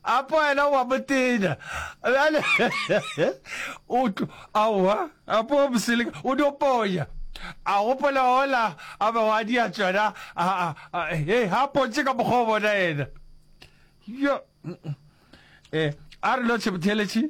apa wena wa motenya bjale o tlo aowa apa wa moseleka o dio ponya a gopola ola a be wa dia tsona e ga pontse ka mokgwa o bona ena yo um a re lo tshemotheletše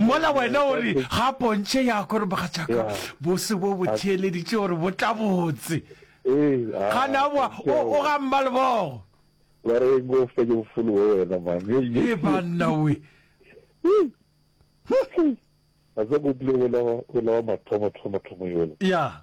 mola wena o re ga pontšhe ya kore mogatšaka bose bo bo theeleditše gore bo tla botse gana o ga mma lebogo e banna we ya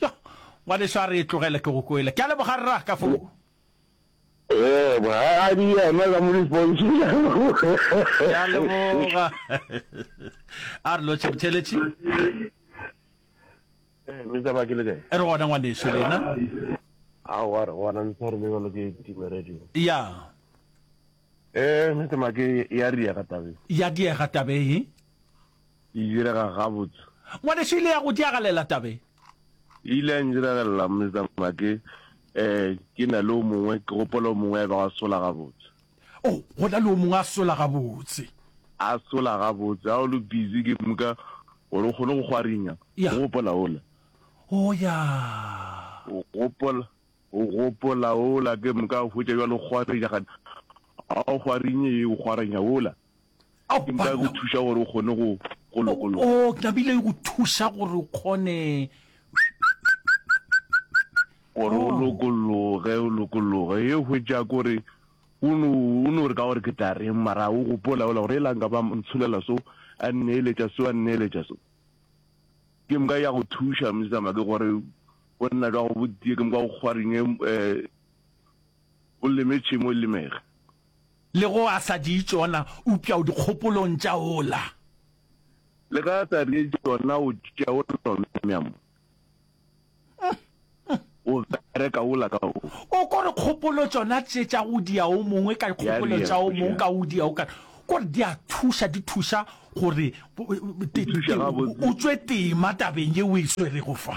Yo, ngwaneso a re e tlogele ke go kwele. Ke a leboga rra ka fo. Yebo, a a di yena ka mo di pontšhe ke a leboga. Ke a leboga. A re lotšhe botheletši. Eh, me taba ke le kae? E re gona ngwaneso lena. A wa re gona le tsare le le ke time radio. Ya. Eh, me tama ke ya ria ka tabe. Ya dia ga tabe. E direga gabotse. Ngwanešu e ile ya go diagalela tabeng. E ile ya ndiragelela, Mister Make. Eh, ke na le o mongwe, ke gopola o mongwe ya bego a sola gabotse. Oh, go na le o mongwe a sola gabotse. A sola gabotse. Ha o le busy ke moka gore o kgone go gwarinya. Ya. O gopola ola? Oh, ya. O gopola, o gopola ola ke moka a hwetša bjale o gwarinya gane. Ha o gwarinye ye, o gwarinya ola. Ao, Ke nka go banna. thuša gore o kgone go, go lokologa. Oo, ke thabile go thuša gore o kgone. Gore o Oh. lokologe, o lokologe. Ye hwetša kore, o no, o no re ka gore ke tla reng, mara o gopola ola gore elang ka ba mo ntsholela so, a nneeletša so, a nneeletša so. Ke mka ya go thuša, Miss Zama, ke gore go nna jwa go botie, ke mka go kgwarinye, um o leme tšhemo e lemege. Le go a sa di tšona, upša o dikgopolong tša ola. Le ge a sa di tšona, o tšea ola mya mo o bereka ola ka o. O ko re kgopolo tšona tše tša go dia o mongwe ka dikgopolo tša o mongwe ka o dia o ka ko re di a thuša, di thuša gore o tšwe tema tabeng ye o e swerego fa.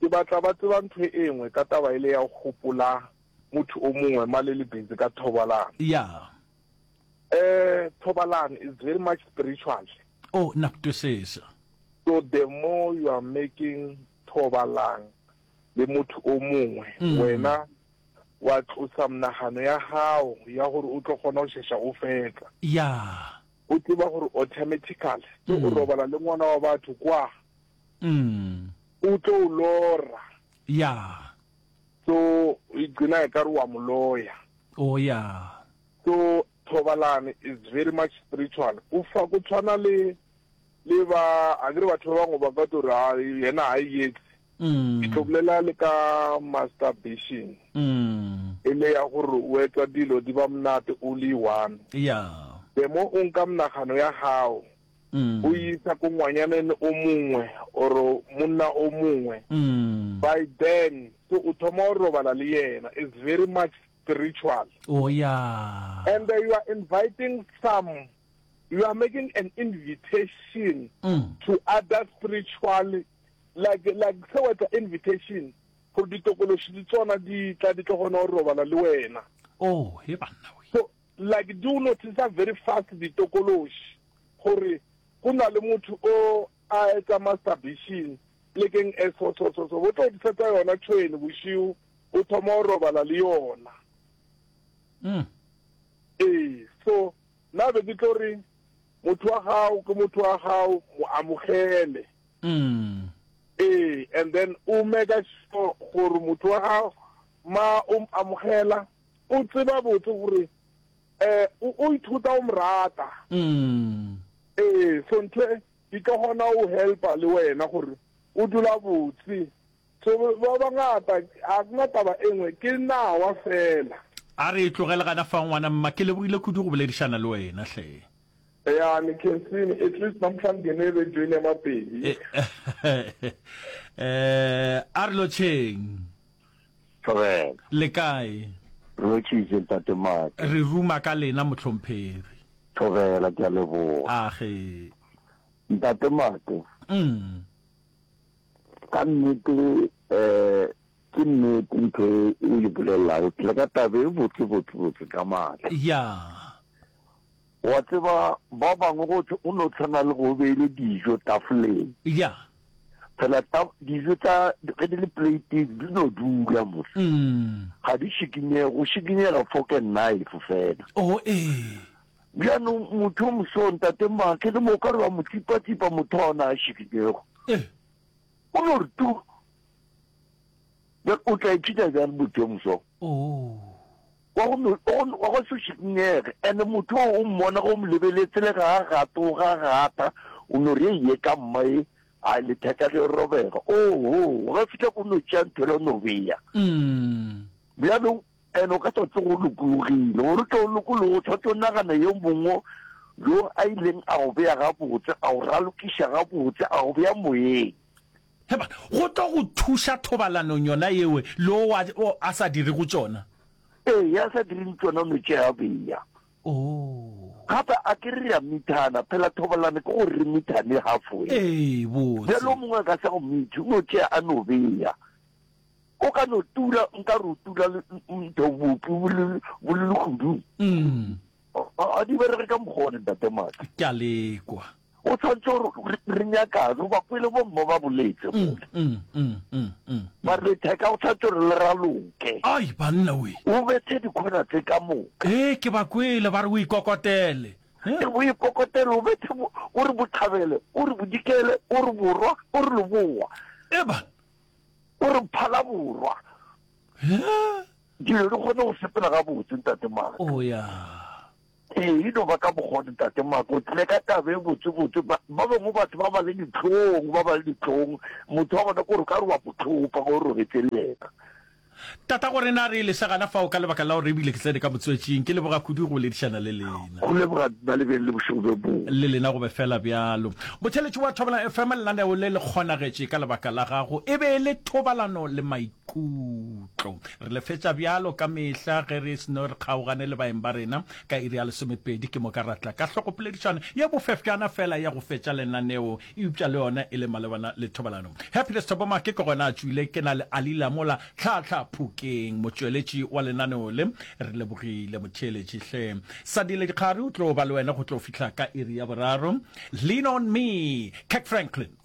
Ke batla ba tseba ntho e engwe ka taba ele ya go gopola motho o mongwe ma le le busy ka thobalano. Yeah. Eh, thobalano is very much spiritual. Oh, na ku twisisa. So the more you are making thobalang le motho o mongwe, mm. wena wa tlosa mnagano ya gago ya gore o tlo kgona go shesha o fetla ya o tseba gore automatically ke go mm. robala le ngwana wa batho kwa Umm. U tlo u lora. Yeah. So i gcina ekare wa mu loya. Oh yeah. So thobalano is very much spiritual. Ku fa ku tshwana le le ba akere batho ba bangwe ba ka tlo re ha yena ha e yetse. Umm. Ke tlo bolela le ka masturbation. Umm. E le ya gore o etsa dilo di ba monate only one. Yeah. The more o nka monagano ya gago. mm. go isa ko ngwanyaneng o mongwe or monna o mongwe mm. by then so o thoma go robala le yena is very much spiritual oh, yeah. and uh, you are inviting some you are making an invitation mm. to other spiritual like like se wetsa invitation gore ditokološi di tsona di tla di tlo gona go robala le wena oh, so Like di o noticer very fast ditokološi gore go na le motho o a etsa masturbation plekeng e so so so so bo tlo disetsa yona tšhwene bošiu o thoma go robala le yona. Mm. Ee, so na be ke tlo re motho wa gago ke motho wa gago mo amogele. Mm. Ee, and then o meka sure gore motho wa gago ma o amogela O tseba botse gore um o ithuta o mo rata. Ee, so ntho e e tlo kgona go helpa le wena gore o dula botse. So ba bangata ga kuna taba e nngwe, ke nawa fela. A re e tlogele gana fa ngwana mma, ke lebogile kudu go boledišana le wena hle. Ya ni khensini at least namhlanje ngene rejweni ya Mapedi. Eh, a re lotšheng. Tlogela. Le kae? Re hwetšitše, Ntate Maki. Re ruma ka lena, Mohlomphegi. Tlogela, ke a leboga. A ge. Ntate Maki. Umm. Ka nnete, eh, ke nnete ntho e o e bolelago. Ke tle ka taba e botse-botse-botse ka maatla. Ya. O a tseba, ba bangwe go thwe o no tshwana le go o beile dijo tafoleng. Ya. Fela ta, dijo tsa, ge di le pleiteng, di no dula mo. Ga di šikinyege, go šikinyega fork and knife fela. Oh, ee. Bjanong motho o moso, Ntate Maake, le mo o ka re wa mo tsipatsipa motho wa ona a šikinyego. Ee. O no re tu. Bjale o tla ithuta bjang motho yo moso? Oh. Wa go, wa go se šikinyege. And motho o, o mmona ge o mo lebeletse, le ga a gate, o ga gata, o no re, Eiye ka mma e, a letheka le robega. Oho, ge fihla ko no tšea ntho le no bea. Bjalo, and o ka tswa tse go lokologile, gore o tle o lokologo, o tshwanetse o nagane yo mongwe yo a ileng a go bea gabotse, a go ralokiša gabotse, a go bea moyeng. Epa, go tlo go thuša thobalanong yona yewe le owa o a sa dirego tšona. Ee, ya sa dirego tšona o no tšea beya. Oo. Gape a ke re re a mithana, phela thobalano ke gore re mithane halfway. Ee, botse. Bjalo o mongwe a ka sa go mithi, o no tšea a no beya. O ka no tula, nka re o tula le ntho bopi bo le bo le legodung. Mm. A di berege ka mokgwa one, Ntate Maka. Ke a lekwa. O tshwanetse gore re- re nyakane goba pele bomma ba boletse Mm, mole mm, mm, mm, mm. ba re letheka o tshwanetse gore le raloke ai banna we o bethe dikgona tse ka moka ee ke ba kwele ba re o ikokotele Eh? o ikokotele o bethe bo- o re botlhabele o re bodikele o re borwa o re loboa e ba o re phala borwa Eh? dilo di kgone go sepela gabotse ntate maka o ya Ee, e no ba ka mokgwa wo, Ntate Mark. O tlile ka taba e botsebotse. Ba, ba bangwe batho ba ba le dihlong, ba ba le dihlong. Motho wa bona ke gore o ka re wa mo thopa ge o robetše le yena. Tata, go re na re lese gana fao ka lebaka la gore e bile ke tsene ka motswetšing. Ke leboga kudu go boledišana le lena. Go leboga nna, le beng le bošego bjo bongwe. Le lena go be feela bjalo. Motheeletši wa Thobalano FM, lenaneo le le kgonagetše ka lebaka la gago. E be e le Thobalano le Mai. Khutlo. Re le fetša bjalo ka mehla ge re seno re kgaogane le baeng ba rena ka iri ya lesomepedi, ke moka ra tla ka hlokopoledišano ye bofefjana fela ya go fetša lenaneo, eupša le yona e le malebana le thobalano. Happiness Thobomake ke gona a tšwile, ke na le Alila mola tlhaatlhaa phokeng, motšweletši wa lenaneo le. Re lebogile motheeletši hle. Sadile Dikgari o tlo ba le wena go tlo fihla ka iri ya boraro. Lean on me, Kirk Franklin.